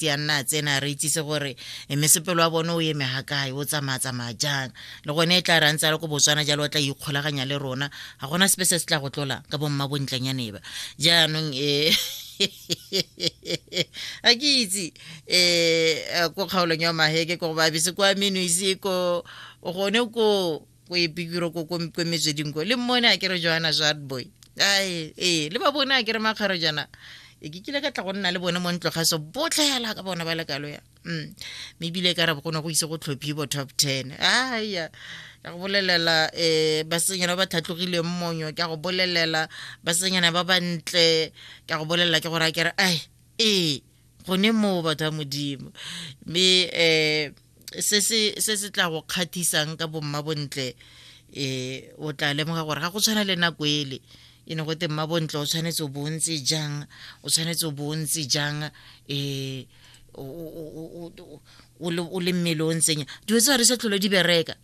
di a nna a tsena a re itsise gore e mesepelo wa bone o eme ga kae o tsamaya tsamaya jang le gone e tla re a ntse a le ko botswana jalo o tla ikgolaganya le rona ga gona sepe se se tla go tlola ka bomma bontlenyaneba jaanong e a ke itse um ko kgaolong ya maheke ko go babese kwa menuise ko gone ko ko epikiro ko ko mezeding ko le mmone a ke re joana jadboy ae ee le ba bone a ke re makgaro jana e ke kile ka tla go nna le bone mo ntlo ga so botlhela ka bona ba lekalo ya mm. mme ebile ka re go ne go ise go tlhophi bo top ten aya ka go bolelela um eh, basenyana ba ba tlhatlogileng monyo ka go bolelela basenyana ba bantle ka go bolelela ke gore a kere ai ee gone moo batho ba modimo mme um se se tla go kgathisang ka bomma bontle um o tla lemoga gore ga go tshwana le nako ele e ne go te mma bontle o tshwanetse o bontse jang o tshwanetse o bontse jang um o le mmele o ntseng dilo tse ga di sa tlholo di bereka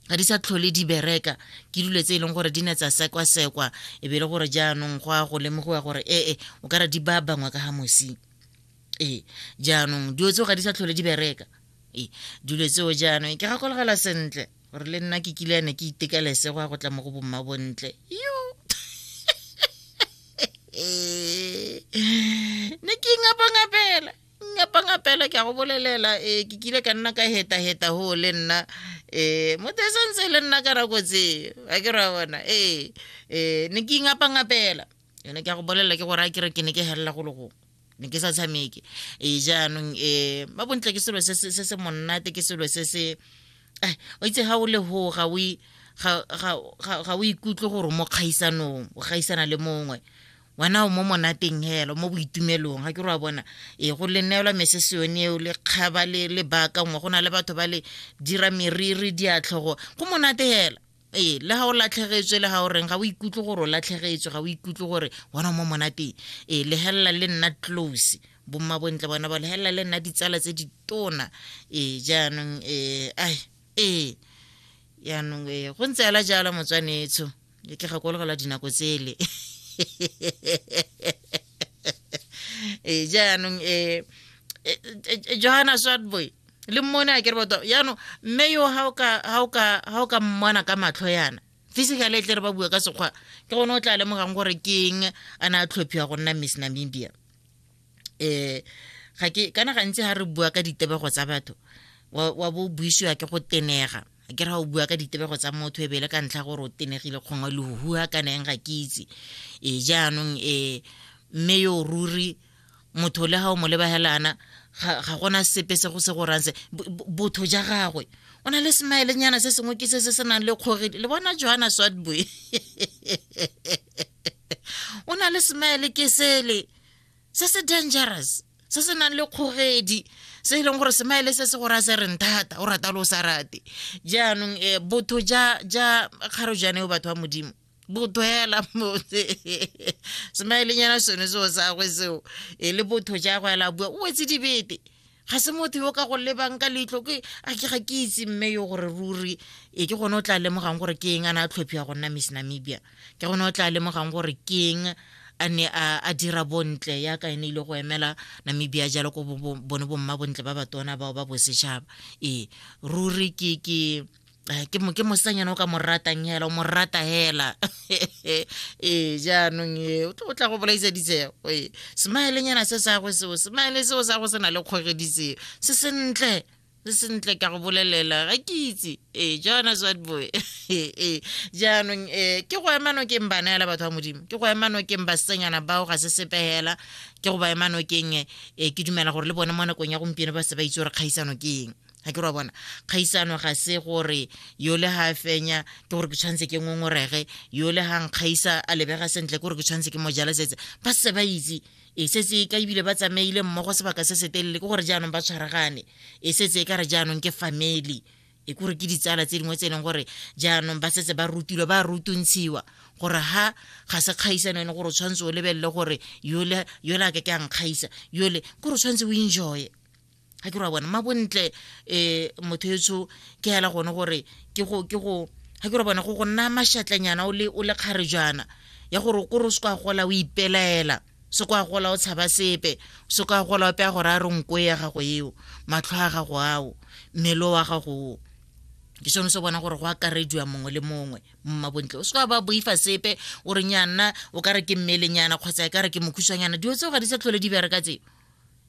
ga di sa tlhole di bereka ke dilo tse e leng gore di ne tsa sekwasekwa e be le gore jaanong go a go lemogiwa gore ee o ka re di ba bangwe ka ga mosi ee jaanong dilo tseo ga di sa tlhole di bereka ee dilo tseo jaanong ke gakologela sentle gore le nna ke kile ne ke itekelese go ya go tla mo go bomma bontle yo ne ke ingapangapela ngapanga fela ke a go bolelela um ke kile ka nna ka heta-heta go le nna um motho e santse le nna ka nako tseo a ke ra bona ee um ne ke ingapangapela ene ke a go bolelela ke gore a kere ke ne ke helela go le gongwe ne ke sa tshameke ee jaanong um ba bontle ke selo se se monnate ke selo se se eh, o itse ga o le go ga o ga o ikutlwe gore mo kgaisanong o gaisana le mongwe wena o mo monateng helo mo boitumelong ga ke re wa bona e go le neelwa mesese yone eo le kgaba le le baakangwe go na le batho ba le dira meriri diatlhogo go monate hela ee le ga o latlhegetswe le ga o reng ga o ikutlwe gore o latlhegetswe ga o ikutlwe gore wena mo monateng ee legelela le nna close bomma bontle bona ba legelela le nna ditsala tse di tona ee jaanong ee ai ee jaanong ee go ntse ela jalo motswanetsho ke tla gakologelwa dinako tsele e jaanong e johanna swartboy le mmone a kere batho jaanong mme yo ga o ka mmona ka matlho yana physically e tle re ba bua ka sekgwa ke gone o tla lemogang gore ke eng a ne a tlhophiwa go nna miss namibia um ga ke kana gantsi ga re bua ka ditebego tsa batho wa bo buisiwa ke go tenega ke re ga o bua ka ditebego tsa motho e bele ka ntlha gore o tenegile kgongwe lehuhua kana eng ga ke itse e jaanong um mme yo ruri motho le ga o mo lebagelana ga gona sepe se go se gorang se botho ja gagwe o na le smilengnyana se sengwe ke se se se nang le kgoge le bona joana swatboy o na le smile ke sele se se dangerous se se nang le kgogedi se e leng gore semaele se se gore a se reng thata o rata le o sa rate jaanong um botho ja ja kgaro jane o batho ba modimo botho hela motse semaelenyana sone seo sagwe seo e le botho ja go ela bua o wetse dibete ga se motho yo ka go lebang ka leitlho ke a ke ga ke itse mme yo gore ruri e ke gone o tla lemogang gore ke eng a ne a tlhophiwa go nna miss namibia ke gone o tla lemogang gore ke eng a ne a dira bontle ya ka ene ile go emela namibia jalo ko bone bomma bontle ba batona bao ba bosetšhaba ee ruri ke ke Eh, ke mo ke mosanyana o ka mo ratang hela o mo rata hela ee jaanong e o tla go bolaisa ditseo ee smile-nyana se sa go seo smile seo sa go se na le kgogediseo se sentle se sentle ka go bolelela ga ke itse ee jaana swatboy ee jaanong um ke go ema nokeng bana ela batho ba modimo ke go ema nokeng basenyana bao ga se sepegela ke go ba ema nokeng um ke dumela gore le bone mo nakong ya gompieno ba se ba itse gore kgaisano ke eng ga ke ra bona kgaisano ga se gore yo le ga fenya ke gore ke tshwanetse ke ngongorege yo le ga nkgaisa a lebega sentle ke gore ke tshwanetse ke mo jala setse ba se ba itse e setse ka ebile ba tsamaile mmogo sebaka se se telele ke gore jaanong ba tshwaragane e setse e ka re jaanong ke family e kore ke ditsala tse dingwe tse e leng gore jaanong ba setse ba rutilwe ba rutuntshiwa gore ha ga se kgaisano ene gore o tshwanetse o lebelele gore yole a ke ke a nkgaisa yole kore o tshwanetse o enjoye ga ke ra bona mabontle um motho etso ke hela gone gore ke go ke go ga ke ra bona go go nna mašatlanyana o le o le kgare jana ya gore ko re se kwa gola o ipelaela se kwa gola o tshaba sepe se kwa gola o peya gore a re nko ya gago eo matlho a gago ao mmele wa gago o ke sone se bona gore go akarediwa mongwe le mongwe mmabontle o se kwa ba boifa sepe o re nyanna o ka re ke mmelenyana kgotsa e ka re ke mokhusanyana dilo tseo ga di sa tlhole di bereka tseo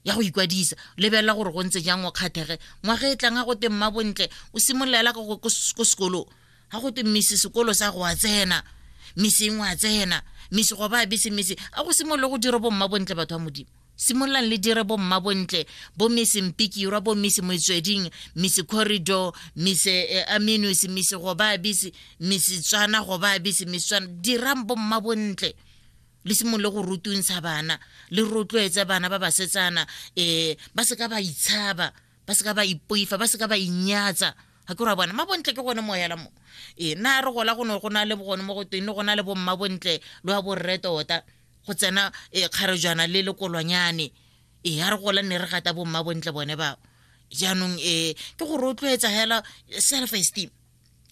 ya go ikwadisa lebelela gore go ntse jang o kgathege ngwaga e tlang ga go te mma bontle o simololela ko sekolong ga go te mmese sekolo sa go a tsena meseng wa tsena mese go ba a bese mese a go simolole go dira bomma bontle batho ba modimo simololang le dire bomma bontle bo mese mpikirwa bo mese motsweding mese corridor mese eh, aminus mese go ba a bese mese tswana go ba a bese mese tswana dirang bomma bontle le simolole go rutuntsha bana le rotloetse bana ba basetsana um ba se ka ba itshaba ba se ka ba ipoifa ba se ka ba inyatsa ga ke ra bona mabontle ke gone moyela mo ee na re gola go ne go na le gone mo go teng le go na le bomma bontle lo ya borre tota go tsena e kgarejwana le lekolwanyane ee a re gola nne re gata bomma bontle bone bao jaanong ee ke go rotloetsa fela self esteem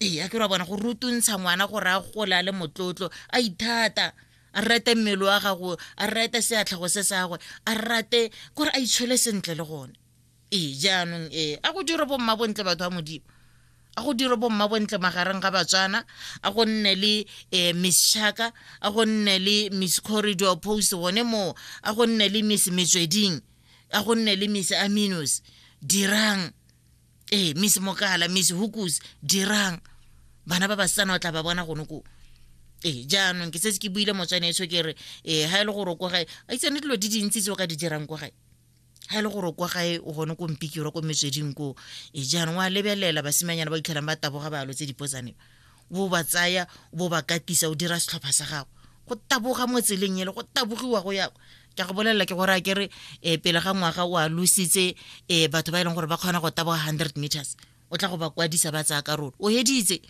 ee a ke ra bona go rutuntsha ngwana gore a gola le motlotlo a ithata a rate mmele wa gago a rate seatlhago se sa gagwe a rate kore a itshole sentle le gone ee jaanong ee a go dire bomma bontle batho ba modimo a go dire bomma bontle magareng ga batswana a go nne le um miss chaka a go nne le miss corridor post gone moo a go nne le miss metsweding a go nne le miss aminos dirang ee miss mokala miss hukus dirang bana ba basetsana o tla ba bona gone ko ee jaanong ke setse ke buile motswane eso ke re ee ga e le gore ko gae a itsane dilo di dintsi tse o ka di dirang ko gae ga e le gore kwa gae o gone ko mpikiro ko metsweding ko e jaanong wa lebelela basimanyana ba itlhelang ba taboga balo tse dipotsane bo ba tsaya bo ba katisa o dira setlhopha sa gago go taboga mo tseleng ele go tabogiwa go ya ke go bolelela ke gore a kere um pele ga ngwaga o a lositse um batho ba e leng gore ba kgona go taboga hundred meters o tla go ba kwadisa ba tsaya karolo o heditse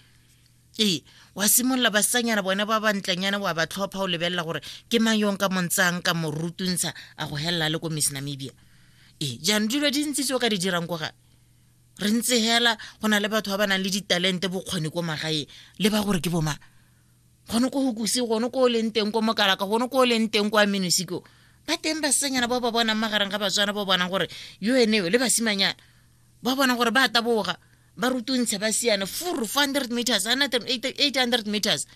ee wa simolola basanyana bone ba bantlenyana wa ba tlhopha o lebelela gore ke mang yong ka montsang ka morutuntsha a go helela le ko miss namibia ee jaanong dilo di ntsi tse o ka di dirang ko gae re ntse hela go na le batho ba ba nang le ditalente bokgoni ko magaeng le ba gore ke boma gone ko hokuse gone ko o leng teng ko mokalaka gone ko o leng teng kwa minosiko ba teng basenyana ba ba bonang magareng ga batswana ba bonang gore yo eneo le basimanyana ba bonang gore ba taboga ba rutuntshe ba siane four four hundred meters eight hundred meters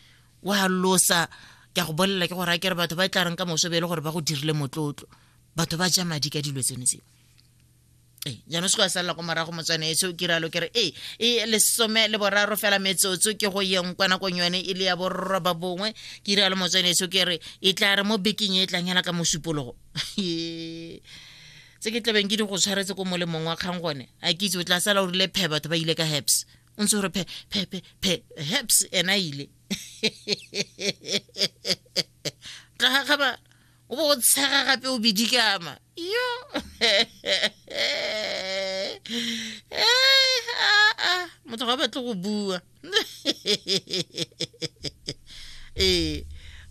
wa losa ke a go bolelela ke gore a kere batho ba e tla reng ka moso be e le gore ba go dirile motlotlo batho ba ja madi ka dilo tseno tseo ee jaanong se go ya salela kwa morago motswane e se o kiralo kere ee e lesome le boraro fela metsotso ke go yeng kwa nakong yone e le ya borroba bongwe ke iralo motswane e se o kere e tla re mo bekeng e e tlang hela ka mosupologo tse ke tlabeng ke di go tshwaretse ko molemong wa kgang gone a ke itse o tla sala o rile phe batho ba ile ka heps o ntse gore phe phe phe phe heps ena ile tla gagabala o bo o tshega gape o bidikama yo motho ga batle go bua ee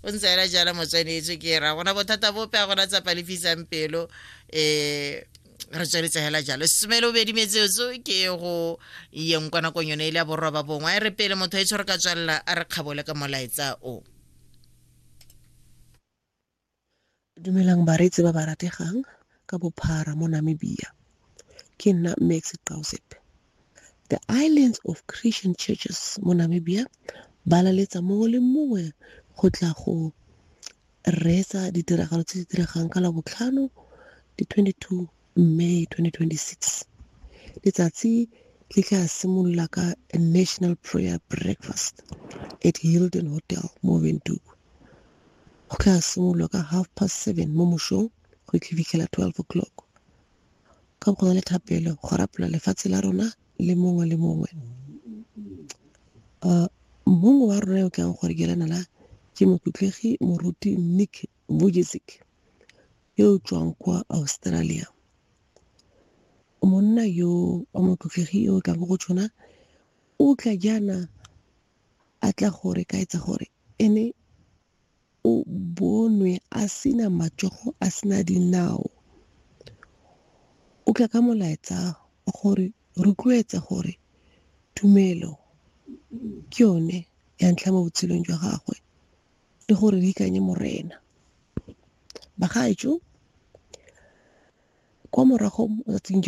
o ntse ela jala motswanetse ke ra gona bothata bope a gona tsapa lefisang pelo um re tsweletse hela jalo semele o bedi metsetso ke go yeng kwa nakong yone e le ya borwa ba bongwe a e re pele motho e tshwere ka tswalela a re kgabole ka molaetsa o Dumelang bareetsi ba ba rategang ka bophara mo Namibia. Ke nna Mme Exit The Islands of Christian Churches mo Namibia ba laletsa mongwe le mongwe go tla go reetsa ditiragalo tse di diregang ka Labotlhano di 22 May 2026. Letsatsi le tla simolola ka a national prayer breakfast at Hilton Hotel mo Windhoek. Go tla simololwa ka half past seven mo mosong go itlhibitlhela 12 o'clock. Ka go na le thapelo go rapela lefatshe la rona le mongwe le mongwe. Uh, mongwe wa rona yo ke yang gore ke lana la ke mokhutlegi moruti nick bojesic yo o tswang kwa Australia. Monna yo wa motlotlegi yo o tlang go tshwana o tla jaana a tla gore ka etsa gore ene o bonwe a sena matsogo a sena dinao o tla ka molaetsa gore rotloetsa gore tumelo ke yone ya ntlha mo botshelong jwa gagwe le gore di ikanye morena. Bagaetsho kwa morago tsatsing